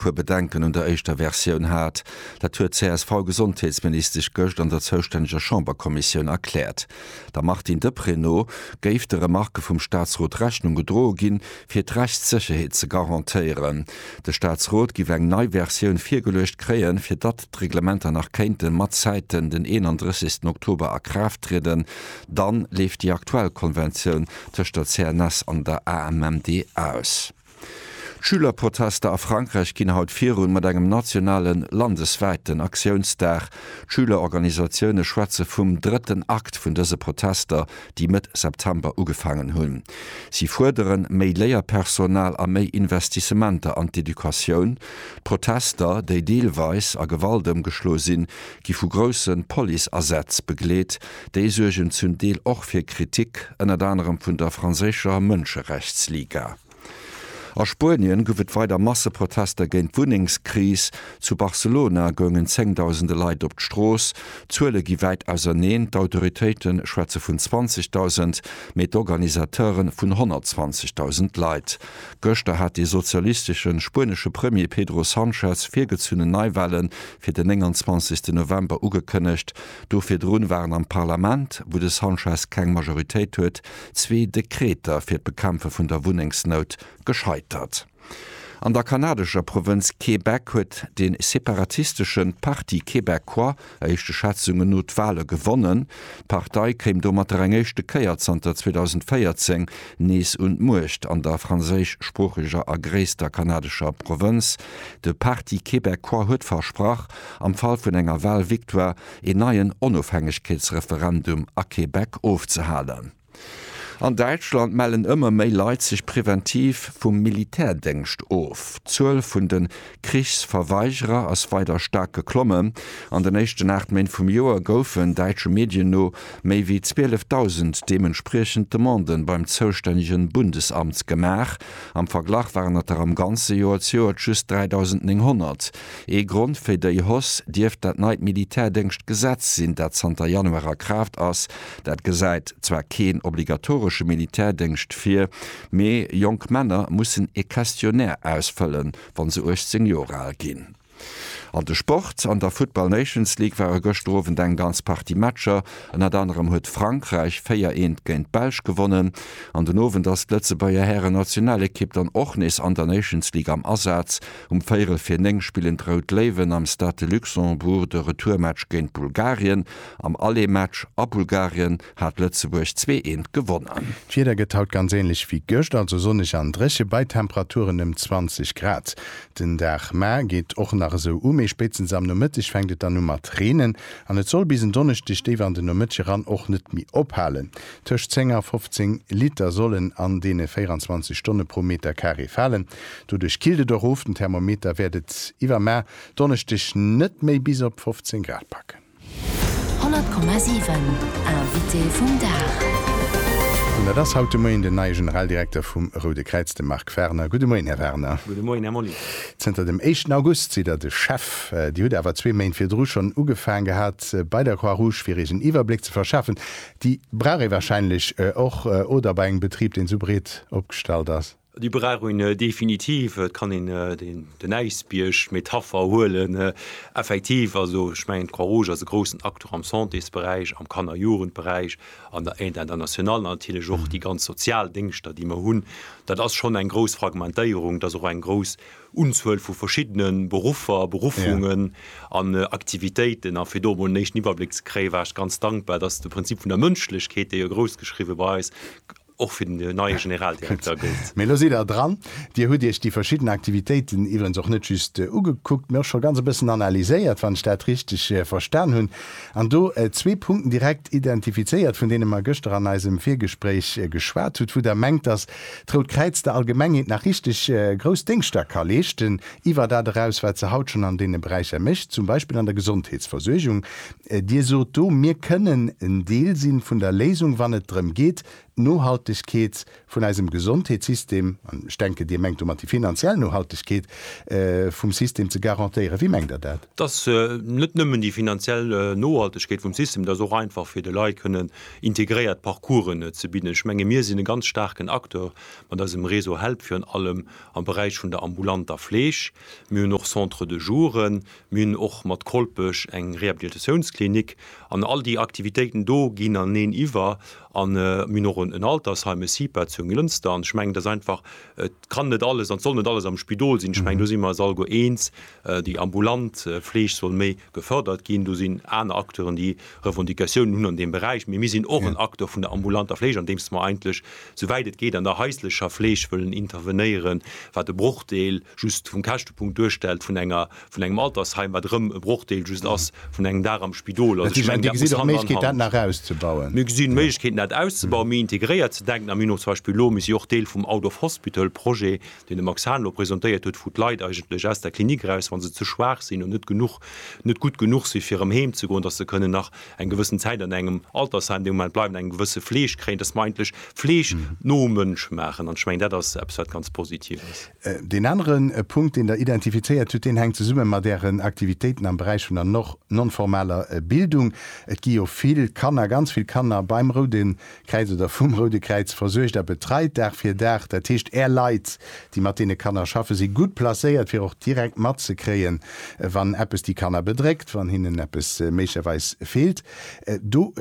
puer Bedenken un der éischter Versioun hat. Dat huet d'CSV-Gesondheetsministesch gëscht an der zoustänneger Chamberkommissioun erkläert. Der Martine Deprez no géif de Remarke vum Staatsrot Rechnung gedroe ginn, fir d'Rechtssécherheet ze garantéieren. De Staatsrot giff eng nei Versioun virgeluecht kréien, fir datt d'Reglementer nach kéinte matzäiten den 31 Oktober a Kraaft trieden. Dann leeft déi aktuell Konventioun tëscht der CNS an der AMMD aus. D'Schülerprotester a Frankräich ginn haut virun, mat engem nationale landeswäiten Aktiounsdag. D'Schülerorganisatioune schwätze vum drëtten Akt vun dëse Protester, déi Mëtt September ugefaangen hunn. Si fuerderen méi Léierpersonal a méi Investissementer an d'Educatioun. D'Protester, déi deelweis a Gewalt ëmgeschloe sinn, gi vu grousse Policeasätz begleet. Déi suergen zum Deel och fir Kritik, ënnert anerem vun der franséischer Mënscherechtsliga. A Spuenien gouf et weider Masseprotester géint d'Wunnengskris. Zu Barcelona goungen zéngdausende Leit op d'Strooss. D'Zuele gi wäit auserneen, d'Autoritéite schwätze vun 20.000, mee d'Organisateure vun 120.000 Leit. Gëschter hat dee sozialistesche spuenesche Premier Pedro Sanchez virgezunnen Neiwale fir den 29. November ugekënnegt. Do virdrun waren am Parlament, wou de Sanchez keng Majoritéit huet, zwee Dekreter fir d'Bekämpfe vun der Wunnengsnout gescheitert. An der kanadescher Provënz Québec huet de separatistesche Parti québécois éischte Schätzungen no d'Wale gewonnen. D'Partei kéim domatter eng éischte Kéier zanter 2014 nees un d'Muecht an der franséischsproocheger a gréisster kanadescher Provënz. De Parti québécois huet versprach, am Fall vun enger Wahlvictoire een neien Onofhängegkeetsreferendum a Québec ofzehalen. An Däitschland mellen ëmmer méi Leit sech preventiv vum Militärdéngscht of. D'Zuel vun de Krichsverweigerer ass weider staark geklommen. An den éischten 8 Méint vum Joer goufen, däitsche Medien no, méi wéi 12.000 deementspriechend Demanden beim zoustännege Bundesamt gemaach. Am Verglach waren et der am ganze Joer zu Joer just 3.900. Ee Grond fir déi Hausse dierft dat neit Militärdéngschtgesetz sinn, dat zanter Januar a Kraaft ass. Dat gesäit zwar keen obligatoresche Militärdéngscht vir, mee jonk Männer mussen ee Questionnaire ausfëllen, wa se 18 Joer al ginn. An de Sport, An der Football Nations League ware gëschter Owend eng ganz Partie Matcher. Ënnert anerem huet Frankräich 4 eent géint d'Belsch gewonnen. An den Owend ass d'Lëtzebuerger Hären-Nationalekipp dann och nees an der Nations League am Asaz. Um véierel vir 9 spillen d'Rout Léiwen am Stade de Luxembourg de Retourmatch géint Bulgarien. Am Aller-Match a Bulgarien hat Lëtzebuerg zwee eent gewonnen. D'Wieder gëtt haut ganz änlech wéi gëscht, also sonneg an dréche bei Temperaturen ëm 20 Grad. Den Dag ma geet och nach esou u, mee spéitstens am Nomëtteg fänkt et dann u mat reenen an et soll bis en Donneschdeg déif an den Nomëtteg eran och net méi ophalen. Tëscht 10 a 15 Liter sollen an deene 24 Stonne pro Meterkaree falen. Doduerch killt et och of, den Thermometer wäert et iwwer mar Donneschdeg net méi bis op 15 Grad packen. 100,7 Invité vum Dag. An dat ass haut de Moien den neie Generaldirekter vum Roude Kräiz, de Marc Werner. Gudde Moien, Här Werner. Gudde Moien, Här Molly. Zënter dem éischten August sidd Der de Chef. Dir hutt awer zwee Méint virdru schonn ugefaang gehat bei der Croix-Rouge, fir Iech en Iwwerbléck ze verschafen. Déi brauch ee wahrscheinlech och, oder? Bei engem Betrib, deen esou breet opgestallt ass. Déi brauch een definitiv. Et kann een den Äisbierg, d'Metapher huelen. Effektiv, also ech mengen d'Croix Rouge ass e groussen Acteur am Santésberäich, am Kanner Jugendberäich, an der Aide internationale natierlech och. Déi ganz Sozialdéngschter, déi mer hunn, dat ass schonn eng grouss Fragmentéierung. Et ass och eng grouss Unzuel vu verschiddene Beruffer, Beruffungen an Aktivitéiten. A fir do emol en éischten Iwwerbléck ze kréien, war ech ganz dankbar, dass de Prinzip vun der Mënschlechkeet, dee jo groussgeschriwwe bei eis och fir den neie Generaldirekter gëllt. Mee elo sidd Der dran. Dir hutt Iech déi verschidden Aktivitéiten iwwerens och net just ugekuckt, mee och scho ganz e bëssen analyséiert, wann ech dat richteg verstan hunn, an do zwee Punkten direkt identifizéiert, vun deene mer gëschter an eisem Virgespréich geschwat hutt, wou Der mengt, dass d'Rout Kräiz der Allgemengheet nach richteg grouss Déngschter ka leeschten, iwwer dat eraus, wat se haut schonn an deene Beräicher mécht, zum Beispill an der Gesondheetsversuergung. Dir sot do, mir kënnen en Deel si vun der Léisung, wann et drëm geet, d'Nohaltegkeet vun eisem Gesondheetssystem, an ech denken, Dir mengt domat déi finanziell Nohaltegkeet vum System ze garantéieren. Wéi mengt Der dat? Dat ass net nëmmen déi finanziell Nohaltegkeet vum System, dat ass och einfach, fir de Leit kënnen integréiert Parcoursen ze bidden. Ech menge mir sinn e ganz staarken Acteur mat eisem Réseau HELP, virun allem am Beräich vun der ambulanter Fleeg. Mir hunn och Centres de jour. Mir hunn och mat Kolpech eng Rehabilitatiounsklinik an all déi Aktivitéiten do ginn aneen iwwer. A mir hunn och en Altersheim, e CIPA zu Jonglënster. An ech mengen, et ass einfach, et kann net alles an et soll net alles am Spidol sinn. Ech mengen, do si mer eis alleguer eens, déi ambulant Fleeg soll méi gefërdert ginn. Do sinn aner Acteuren, déi Revendicatiounen hunn an deem Beräich. Mee mir sinn och en Acteur vun der ambulanter Fleeg, andeems mer eigentlech, souwäit et geet, an der haislecher Fleeg wëllen intervenéieren, wat e Brochdeel just vum Käschtepunkt duerstellt vun enger, vun engem Altersheim, wat erëm e Brochdeel just ass vun engem Dag am Spidol. Also ech mengen, dat muss Hand an Hand. Mir gesinn Méiglechkeeten, dat auszubauen, méi integréiert ze denken. A mir hunn och zum Beispill elo, mir si och Deel vum Out of Hospital Projet, deen de Max Hahn elo presentéiert huet, wou d'Leit eigentlech aus der Klinik eraus, wa se ze schwaach sinn oder net genuch, net gutt genuch si fir erëm heem ze goen, dass se kënnen nach eng gewëssen Zäit an engem Altersheim dee Moment bleiwen, eng gewësse Fleeg kréien, dass mer eigentlech Fleeg no Mënsch maachen. An ech mengen, dat ass eppes, wat ganz positiv ass. Deen anere Punkt, deen Der identifizéiert hutt, deen hänkt zesumme mat Ären Aktivitéiten am Beräich vun der non-formaler Bildung. Et gi jo vill Kanner, ganz vill Kanner beim Roude Kräiz oder vum Roude Kräiz versuergt a betreit, Dag fir Dag. Dat heescht, Är Leit, déi mat deene Kanner schaffen, si gutt placéiert, fir och direkt matzekréien, wann eppes déi Kanner bedréckt, wann hinnen eppes méiglecherweis feelt. Do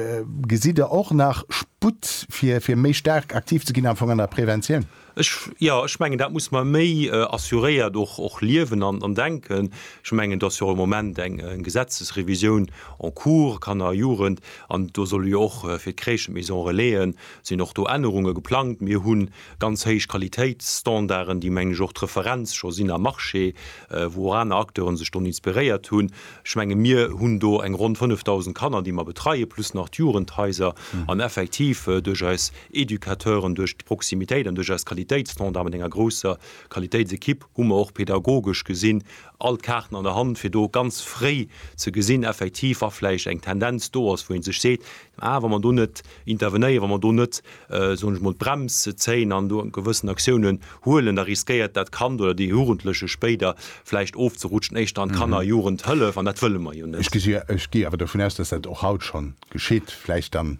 gesitt Der och nach Sputt, fir méi staark aktiv ze ginn am Fong an der Preventioun? Ech, jo, ech mengen, dat muss mer méi assuréiert och, och liewen an, an denken. Ech mengen, do ass jo och im Moment eng, eng Gesetzesrevisioun en cours, Kanner a Jugend, an do solle jo och fir d'Crèchen, d'Maisons relaisen, sinn och do Ännerunge geplangt. Mir hu ganz héich Qualitéitsstandarden, déi, mengen ech, och d'Referenz scho sinn am Marché, wou och aner Acteuren sech doni inspiréiert hunn. Ech menge mir hunn do eng ronn 5.000 Kanner, déi mer betreien, plus nach d'Jugendhaiser an effektiv duerch eis Educateuren duerch d'Proximitéit an duerch eis Qualitéitsstandarde mat enger grousser Qualitéitsekipp hu mer och pedagogesch gesinn all d'Kaarten an der Hand, fir do ganz fréi ze gesinn effektiv, wa vläicht eng Tendenz do ass, wou ee sech seet, ah wa mer do net intervenéieren, wa mer do net, soen ech mol, d'Brems zéien an do gewëssen Aktiounen huelen, da riskéiert dat Kand oder dee Jugendleche spéider vläicht ofzerutschen, éischter an d'Kanner a Jugendhëllef an dat wëlle mer jo net. Ech gi awer dovun aus, dass dat och haut scho geschitt, vläicht dann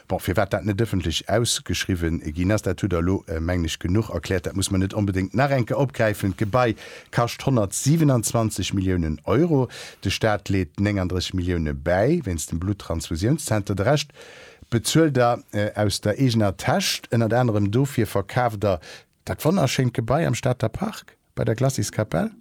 Bon, firwat dat net ëffentlech ausgeschriwwen ginn ass, dat hutt Der elo, mengen ech, genuch erkläert. Dat muss mer net onbedéngt nach eng Kéier opgräifen. D'Gebai kascht 127 Milliounen Euro. De Staat leet 39 Millioune bäi wéinst dem Blutttransfusiounszenter. De Rescht bezuelt Der aus der eegener Täsch. Ënnert anerem dofir verkaaft Der Dat wonnerschéint Gebai am Stater Park bei der Glaciskapell?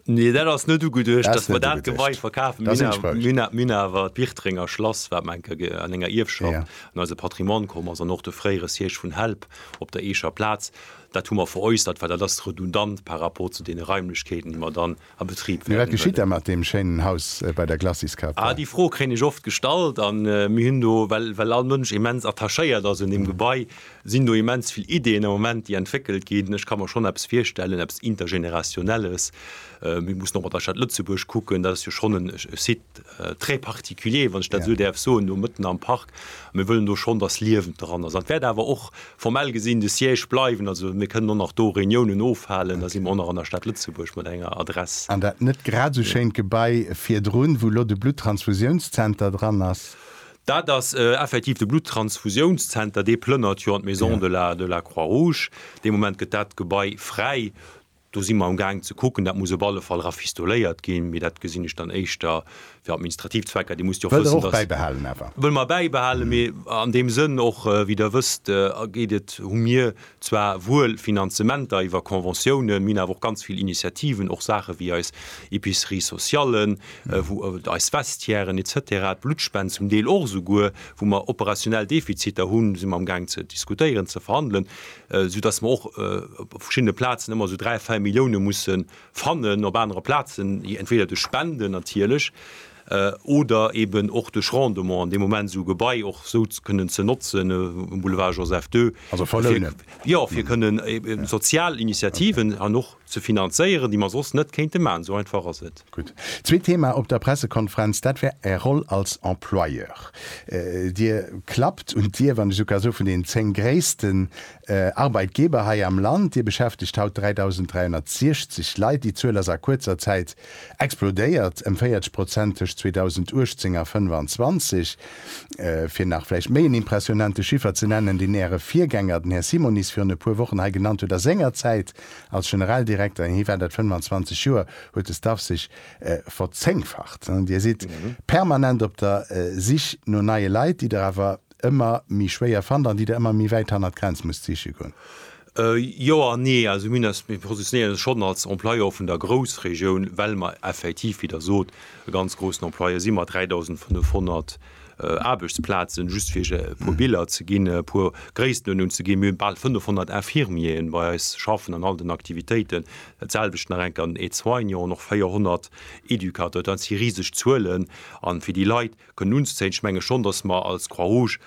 Nee, dat ass net ugeduecht, dass mer dat Gebai verkafen. Mir hunn awer d'Biertrenger Schlass, wat mer an enger Ierfschaft an eise Patrimoine komm ass, an och de fréiere Siège vun Help op der Eecher Plaz, dat hu mer veräussert, well dat ass redundant par rapport zu deene Raimlechkeeten, déi mer dann a Betrib wäerten huelen. Mee wat geschitt da mat deem schéinen Haus bei der Glacis-Café? Ah, déi Fro kréien ech oft gestallt a mir hunn do, well well all Mënsch immens attachéiert ass un deem Gebai, sinn do immens vill Ideeën am Moment, déi entwéckelt ginn. Ech ka mer schonn eppes virstellen, eppes Intergenerationelles. Mir mussen och mat der Stad Lëtzebuerg kucken, dat ass jo schonn e Site, très particulier, wann ech dat esou däerf soen, do mëtten am Park. Mir wëllen do schonn, dass Liewen dran ass. An et wäert awer och formell gesinn de Siège bleiwen. Also mir kënnen och nach do Reuniounen ofhalen. Da si mer och nach an der Stad Lëtzebuerg mat enger Adress. An dat net grad esou schéint Gebai virdrun, wou elo de Bluttransfusiounszenter dran ass? Dat ass effektiv de Bluttransfusiounszenter. Dee plënnert jo an d'Maison de la Croix-Rouge. Dee Moment gëtt dat Gebai fräi. Do si mer am Gaang ze kucken. Dat muss op alle Fall rafistoléiert ginn, mee dat gesinn ech dann éischter fir administrativ Zwecker. Dir musst jo och wëssen, dass. Wëllt Der och bäibehalen awer? Wëlle mer bäibehalen, mee an deem Sënn och, wéi Der wësst, geet et, hu mir zwar wuel Finanzementer iwwer Conventiounen, mir hunn awer och ganz vill Initiativen, och Saache wéi eis Epicerie sociale, wou eis Vestiairen et cetera, d'Bluttspend zum Deel och esouguer, wou mer operationell Defiziter hunn, si mer am Gaang ze diskutéieren, ze verhandelen. esou dass mer och op verschiddene Plazen ëmmer esou dräi, véier Millioune musse fannen, op anere Plazen entweder duerch Spenden natierlech oder eeben och duerch Rendement, an dee Moment esou e Gebai och esou kënnen ze notzen um Boulevard Joseph Ii, jo, fir kënnen sozial Initiativen an och. Ze finanzéieren, déi mer soss net kéinte maachen. Esou einfach ass et. Gutt. Zweet Thema op der Pressekonferenz, dat war Är Roll als Employeur. Dir klappt un d'Dier, wann ech esou ka soen, vun den 10 gréissten Arbeitgeber hei am Land. Dir beschäftegt haut 3.360 Leit. Déi Zuel ass a kuerzer Zäit explodéiert, ëm 40 Prozent tëscht 2018 a 2025. Fir nach vläicht méi en impressionante Chiffer ze nennen, deen Äre Virgänger, den Här Simonis, virun e puer Wochen hei genannt huet, A senger Zäit Als Generaldirekter, hie war dat 25 Joer, huet de Staff sech verzéngfacht. Dir sidd permanent op der Sich no neie Leit, déi Der awer ëmmer méi schwéier fannt an déi Der ëmmer méi wäit hannert d'Grenz musst siche goen. Jo an nee. Also mir hunn eis, mir positionéieren eis schonn als Employeur vun der Groussregioun, well mer effektiv, wéi Der sot, e ganz groussen Employeur si mat 3.500 Aarbechtsplazen, just fir iech e puer Biller ze ginn, e puer Gréisstenunn ze ginn, mir hunn bal 500 Infirmieren bei eis schaffen an all den Aktivitéiten, dat selwecht nach eng Kéier an den Aide-soignants an och 400 Educateurs. Dat si riseg Zuelen a fir déi Leit kënnen unzezéien, ech menge schonn, datt mer als Croix-Rouge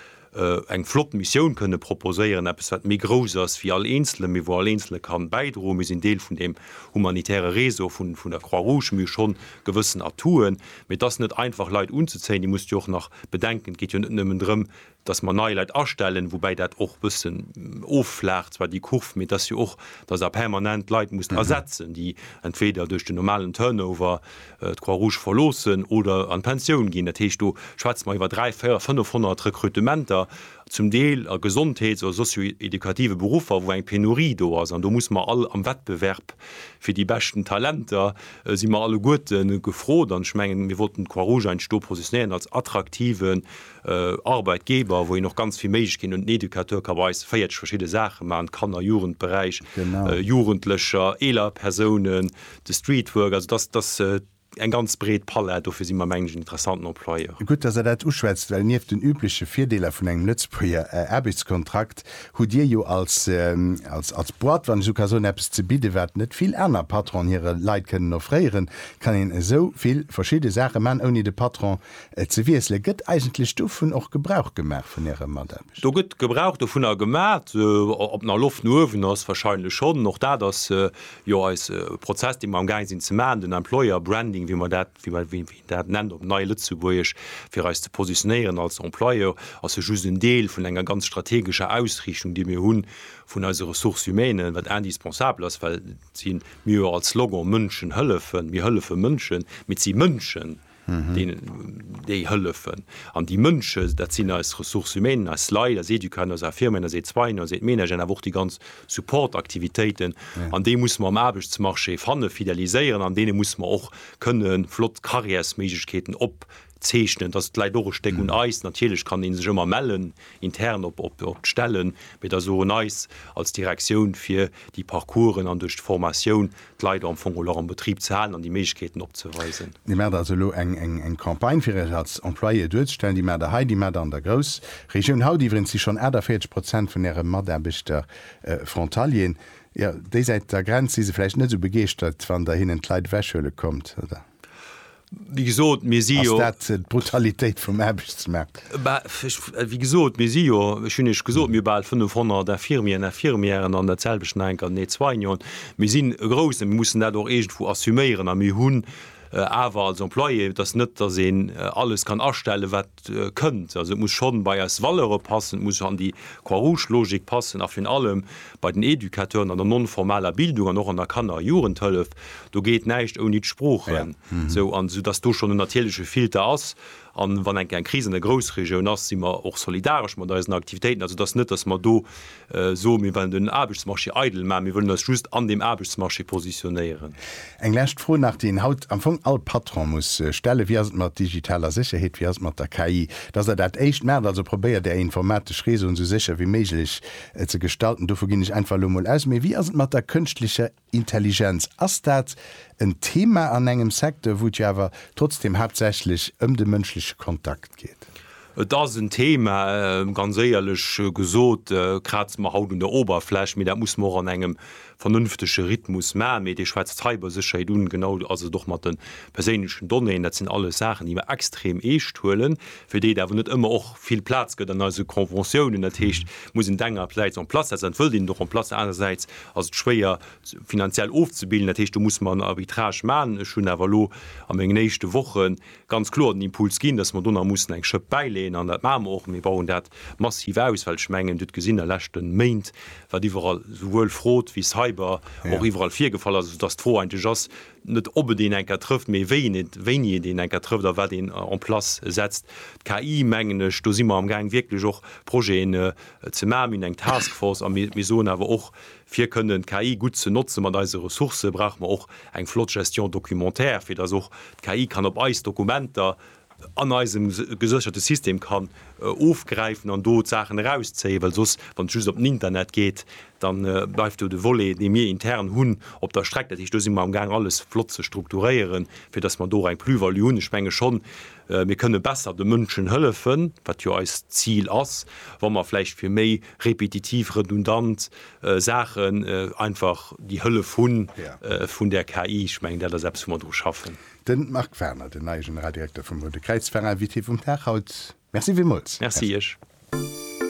eng flott Missioun kënne proposéieren, eppes wat méi grouss ass wéi all Eenzelen, mee wou all Eenzele ka bäidroen. Mir sinn Deel vun deem humanitäre Réseau vun der Croix-Rouge, mir hu schonn gewëssen Atouten. Mee et ass net einfach, Leit unzezéien. Dir musst jo och nach bedenken, et geet jo net nëmmen drëm, dass mer nei Leit astellen, woubäi dat och e bëssen offlaacht zwar déi Kurv, mee et ass jo och, dass Der permanent Leit musst ersetzen, déi entweder duerch den normalen Turnover d'Croix-Rouge verloossen oder an d'Pensioun ginn. Dat heescht, do schwätze mer iwwer 300, 400, 500 Rekrutementer. zum Deel a Gesondheets oder sozioedukative Beruffer, wou eng Penurie do ass, an do muss mer all am Wettbewerb fir déi beschten Talenter si mer alleguerte gefrot. An ech mengen, mir wollten d'Croix-Rouge heianscht do positionéieren als attraktiven Arbeitgeber, wou een och ganz vill Méiglechkeeten huet. En Educateur ka bei eis 40 verschidde Saache maachen, Kanner-, Jugendberäich, Jugendlecher, eeler Persounen, de Streetwork, also dass, dass, Eng ganz breet Palett, dofir si mer, mengen ech, en interessanten Employeur. Gutt, dass Der dat uschwätzt, well nieft den übleche Virdeeler vun engem Lëtzebuerger Aarbechtskontrakt hutt Dir jo als, als Boîte, wann ech esou ka soen, eppes ze bidden, wat net vill aner Patronen hire Leit kënnen offréieren. Et kann een esou vill verschidde Saache maachen, ouni de Patron ze wiesselen. Gëtt eigentlech dovun och Gebrauch gemaach, vun Äre Mataarbechter? Do gëtt Gebrauch dovunner gemaat. Ob nach Loft no uewen ass? Wahrscheinlech schonn. Och dat ass jo eis Prozess, dee mer am gaange sinn ze maachen, den Employer Branding, wéi mer dat, wéi mer, wéi een dat nennt op Nei-Lëtzebuergesch, fir eis ze positionéieren als Employeur, ass jo just en Deel vun enger ganz strategescher Ausriichtung, déi mir hu vun eise Ressources humaines, wat indispensabel ass, well et si mir jo als Slogan Mënschen hëllefen, mir hëllefe Mënschen, mee et si Mënschen, déi hëllefen. An déi Mënsche, dat sinn eis Ressources humaines, eis Leit, eis Educanden, eis Infirmieren, eis Aide-soignants, eis Aide-ménageren, awer och déi ganz Support-Aktivitéiten, an déi musse mer um Aarbechtsmarché fannen, fideliséieren an deene musse mer och kënne flott Carrièresméiglechkeeten opzeechnen. Dat läit och e Stéck un eis. Natierlech kann ee sech ëmmer mellen intern op d'Stellen, mee et ass och un eis als Direktioun, fir déi Parcoursen an duerch d'Formatioun d'Leit am Fong geholl och am Betrib ze halen an déi Méiglechkeeten opzeweisen. Dir maacht also elo eng Campagne, fir Iech als Employé duerzestellen. Déi maacht Der hei, déi maacht Der an der Groussregioun. Haut iwweregens si schonn 48 Prozent vun Äre Mataarbechter Frontalieren. Jo, déisäit der Grenz si se vläicht net esou begeeschtert, wann Der hinnen d'Leit ewechhuele kommt, oder? Wéi gesot, mir si jo. Ass dat d'Brutalitéit vum Aarbechtsmaart? Bah, wéi gesot, mir si jo, ech hunn Iech gesot, mir hu bal 500 Infirmieren, Infirmièren an datselwecht nach eng Kéier den Aide-soignant. Mir sinn e groussen, mir mussen dat och iergendwou assuméieren a mir hunn awer als Employé, et ass net, datt een alles kann astellen, wat. kënnt. Also et muss schonn bei eis Valeure passen, et muss an déi Croix-Rouge-Logik passen a virun allem bei den Educateuren an der non-formaler Bildung an och an der Kanner a Jugendhëllef. Do geet näischt ouni d'Sproochen. Sou, an esou datt do schonn en natierleche Filter ass. An wann enke eng Kris an der Groussregioun ass, si mer och solidaresch mat eisen Aktivitéiten. Also et ass net, datt mer do soen, mir wellen den Aarbechtsmarché eidel maachen, mir wëllen eis just an deem Aarbechtsmarché positionéieren. Eng lescht Fro nach, déi een haut am Fong all Patron muss stellen, Wéi ass et mat digitaler Sécherheet, wéi ass et mat der KI, datt Der dat éischt maacht? Also probéiert Är informatesch Réseauen esou sécher wéi méiglech ze gestalten, dovu ginn ech einfach elo emol aus, mee wéi ass et mat der kënschtlecher Intelligenz, ass dat en Thema an engem Secteur, wou et jo awer trotzdem haaptsächlech ëm de mënschleche Kontakt geet? Et ass en Thema, ganz éierlech gesot kraze mer haut un der Oberfläch, mee dat musse mer och an engem vernünftege Rhythmus maachen. Mee Dir schwätzt d'Cybersécherheet un, genau ass et och mat de perséinlechen Donnéeën. Dat sinn alles Saachen, déi mer extrem eescht huelen, fir déi et awer net ëmmer och vill Plaz gëtt an eise Conventiounen. Dat heescht, et muss een et engersäits en place setzen, dat wëllt een et och en place setzen, anerersäits ass et schwéier finanziell ofzebilden. Dat heescht, do muss mer en Arbitrage maachen. Ech hunn awer elo a mengen éischte Woche ganz kloer den Impuls ginn, dass mer do nach mussen eng Schëpp bäileeën an dat maache mer och. Mir bauen dat massiv aus, well ech mengen, Dir hutt gesinn a leschte Méint, wat iwwerall esouwuel Fraude wéi Cyber och iwwerall virgefall ass, esou dass d'Fro eigentlech ass, net ob et een eng Kéier trëfft, mee wéini et een eng Kéier trëfft a wat een en place setzt. D'KI, mengen ech, do si mer amgaang wierklech och Projeten ze maachen. Mir hunn eng Taskforce a mir soen awer och, fir kënnen d'KI gutt ze notze mat eise Ressourcë brauche mer och eng flott Gestion documentaire, fir datt och d'KI kann op eis Dokumenter an eisem gesécherte System kann ofgräifen an do d'Saachen erauszéien, well soss, wann et just op den Internet geet, da bleift do de Volet, dee mir intern hunn, op der Streck. Dat heescht, do si mer amgaang alles flott ze strukturéieren, fir datt mer do och eng Plus-value hunn. Ech menge schonn, mir kënne besser de Mënschen hëllefen, wat jo eist Zil ass, wa mer vläicht fir méi repetitiv, redundant Saachen einfach déi Hëllef hu vun där KI. Ech mengen, dat ass eppes, wou mer dru schaffen. De Marc Werner, den neie Generaldirekter vum Rote Kräiz Veräin, Invité vum Dag haut. Merci villmools. Merci Iech.